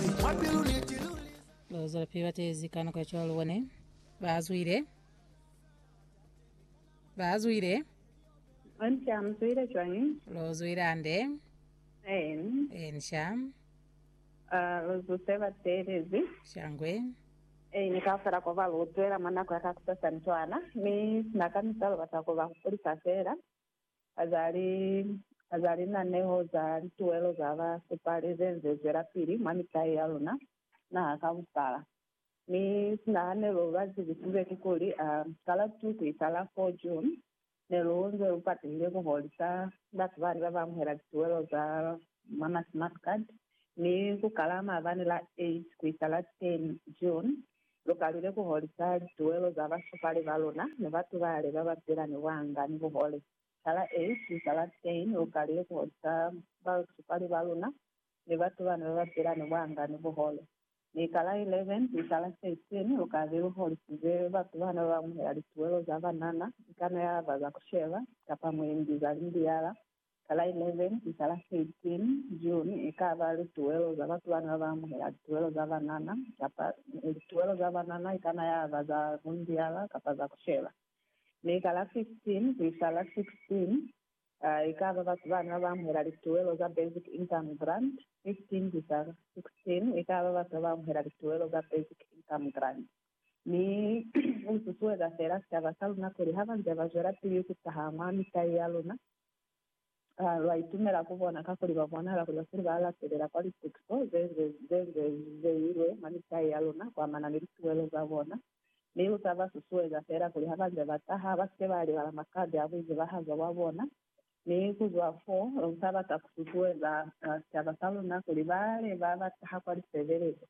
mwa pilu ni tilu li za. Bazwalapilu ba teezi ka nako ya cwalo ba ne ba zwile, ba zwile. Onsha, mu zwile cwañi? Lo zwile hande. Eeni. Ensha. Ah, lu zu se ba teelezi. Shangwe. Eeni, kaufela ko ba lu zwela mwa nako ya kakusasani cwana, mi sina ka misalo ba sa ku ba hupulisa fela. Azali, aza linaneho za lituwelo za ba supali ze nze zwelapili mwa mitai ya luna, naha ka bupala. Mi sinahanelo ba zibisize kikuli, a, ka la tu ku isa la 4 June, ne lu nze lu patehile ku holisa batu bani ba ba amuhela lituwelo za mwa ma smart card, mi ku kala maabani la 8 ku isa la 10 June, Lu kalile ku holisa lituwelo za basupali ba luna ni batu bale ba ba pila ni buanga ni buhole. Ka la 8 ku isa la 10, lu kalile ku holisa basupali ba luna ni batu bane ba ba pila ni buanga ni buhole. Mi ka la 11 ku isa la 13, lu kale lu holisize batu bane ba ba amuhela lituwelo za banana, ikana ya ba za ku sheba, kapa mwendi, za limbiyala, Ka la 11 ku isa la 13 June, e ka ba lituwelo za batu bane ba ba amuhela lituwelo za banana, kapa lituwelo za banana i kana ya ba za mundiala kapa za ku sheba. Mi ka la 15 ku isa la 16, e ka ba batu bane ba ba amuhela lituwelo za Basic Income Grant, 15 ku isa 16, e ka ba batu ba ba amuhela lituwelo za Basic Income Grant. Mi u susueza fela sicaba sa luna kuli ha ba nze ba zwelapili ku taha mwa mitai ya luna, lwa itumela ku bona kakuli ba bonahala kuli ba file ba latelela kwa litukiso ze nze li zeilwe mwa mitai ya luna kuamana ni lituwelo za bona. Mi lu sa ba susueza fela kuli ha ba nze ba taha, ba si ke ba libala makande a buizibahazo bwa bona. Mi ku zwa fo, lu sa bata ku susueza sicaba sa luna kuli bale ba ba taha kwa lisebelezo,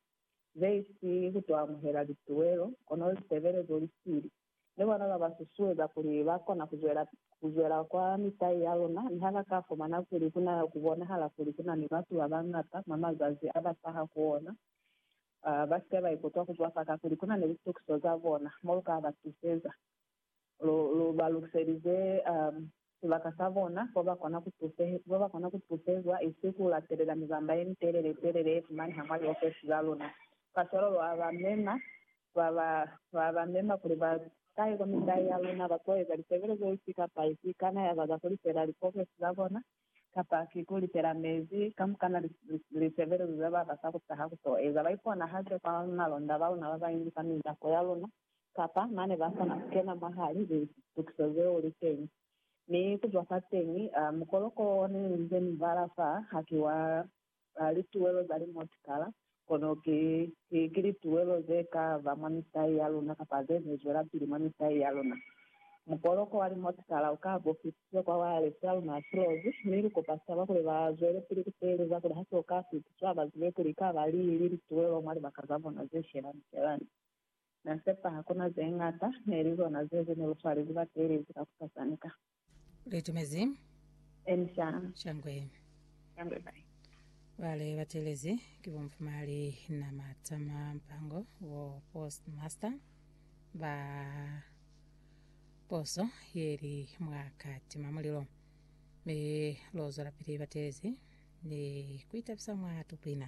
ze si ku to amuhela lituwelo, kono lisebelezo li sili. Ni bona ba ba susueza kuli ba kona ku zwela, ku zwela kwa mitai ya luna, ni ha ba ka fumana kuli ku na, ku bonahala kuli ku na ni batu ba bañata mwa mazazi a ba taha ku ona, ba si ke ba ikutwa ku zwafa kakuli ku na ni litukiso za bona. Mo lu ka ba tuseza, lu, lu ba lukiselize Sibaka sa bona kwa ba kona ku tusehe, kwa ba kona ku tusezwa, isi ku latelela mibamba ye mitelele telele ye fumaneha mwa liofesi za luna. Kacwalo lwa ba mema, lwa ba, lwa ba mema kuli ba tahe kwa mitai ya luna, ba to eza lisebelezo ifi kapa ifi, ikana ya ba za ku lipela likofesi za bona, kapa ki ku lipela mezi, kamukana li, li, lisebelezo ze ba bata ku taha ku to eza. Ba iponahatše kwa malonda ba luna ba bañwi kwa mindapo ya luna, Kapa mane ba kona ku kena mwahali litukiso zeo li teñi. Mi ku zwa fateñi, mukoloko o ne ni nze ni bala fa, haki wa lituwelo za limotikala, kono ki, ki, ki lituwelo ze ka ba mwa mitai ya luna kapa ze ze zwelapili mwa mitai ya luna. Mukoloko wa limotikala u ka bo fitiswe kwa wireless ya luna ya kilozi, mi lu kopa sicaba kuli ba zwelepili ku teeleza kuli ha so ka fitiswa ba zibe kuli i ka ba li li lituwelo mwa libaka za bona ze shelani-shelani. Na sepa hakuna ze ñata, ne li zona ze ze neli cwale li ba teelezi ka ku sa sanika. Litumezi. Emi sha. Shangwe. Shangwe bai. Bale ba teelezi ki bo Mfumali na Matama Mpango, bo Postmaster ba poso ye li mwa Katima Mulilo. Mi lo zwelapili ba teelezi ni ku itabisa mwa Tukwina.